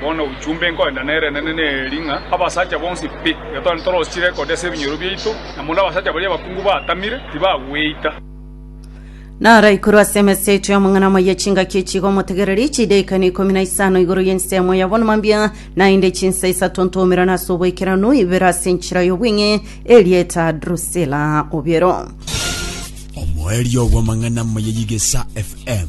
Bono ochumbe nkorenda nerenene neri ng'a abasacha bonsi pi getore ntorochire kodesa ebinyoro biaito, na mono abasacha baria abakungu baatamire tibagweita. Naro ekuru ase emesa yaito y'amang'ana amaya chingaki echi iga omotegereri, chidaekano ikomi na isano igoro y'ensemo ya bonuma mbia, naende chinsa isato ntomerano ase oboikeranu, ibere ase enchera y'obweng'e erieta Drusila. Obiero. Omoerio bw'amang'ana amaya y'Igesa FM.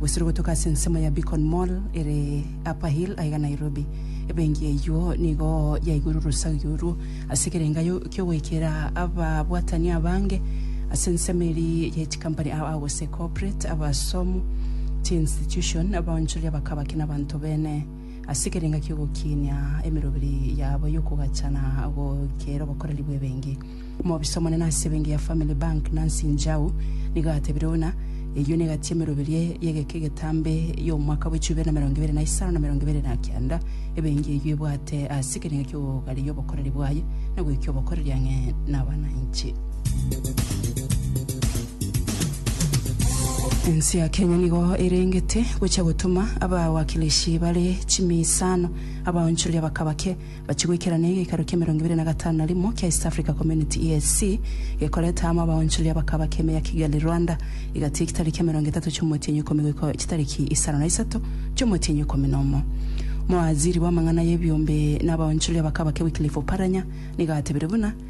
Gosira ogotoka ase ensemo ya Beacon Mall ere Upper Hill aiga Nairobi. Ebenki eyio nigo yaigure orosagi orwo ase ekerengayo ki'ogoikera ababwatani abange ase ensemo eria ye chikampani aa gose corporate, abasomu, chiinstitution, abaonchoria bakabaki na abanto bene ase ekerenga ki'ogokinia emeroberi yabo y'okogachana goikera obokoreri bw'ebenki. Omobisa omonene ase ebenki ya Family Bank, Nancy Njau, nigo agatebire buna, Eyio negati emeroberio y'egeka egetambe y'omwaka bw'echumi ibere na emerongo ebere na isano na emerongo ebere na kenda, ebenki eyio ebwate ase ekerengo ki'ogogaria obokoreri bwaye na goika obokoreri ang'e nabananchi. Ense ya Kenya nigo erengete gocha gotoma abawakilishi bare chimiisano abaonchoria baka bake Bachie goikerana egekaro ki'emerongo ebere na gatano na rimo kia East Africa Community, EAC, gekoreta amo abaonchori abakaba keme ya Kigali, Rwanda, igati y'echitari ki'emerongo etato chi'omotienyi ikomi goika chitariki isano na isato chi'omotienyi ikomi na omo. Mowaziri bw'amang'ana y'ebiombe na abaonchori abakaba ke Wycliffe Oparanya nigo atebirie buna,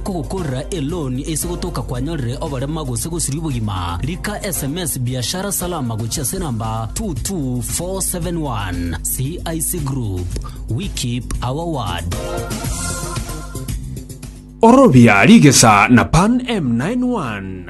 kogokorera eloan ase gotoka kwanyorire oborema gose gosiria obogima, rika sms Biashara Salama gochia ase namba 22471. CIC Group, we keep our word. Orobia rigesa na Pan M91.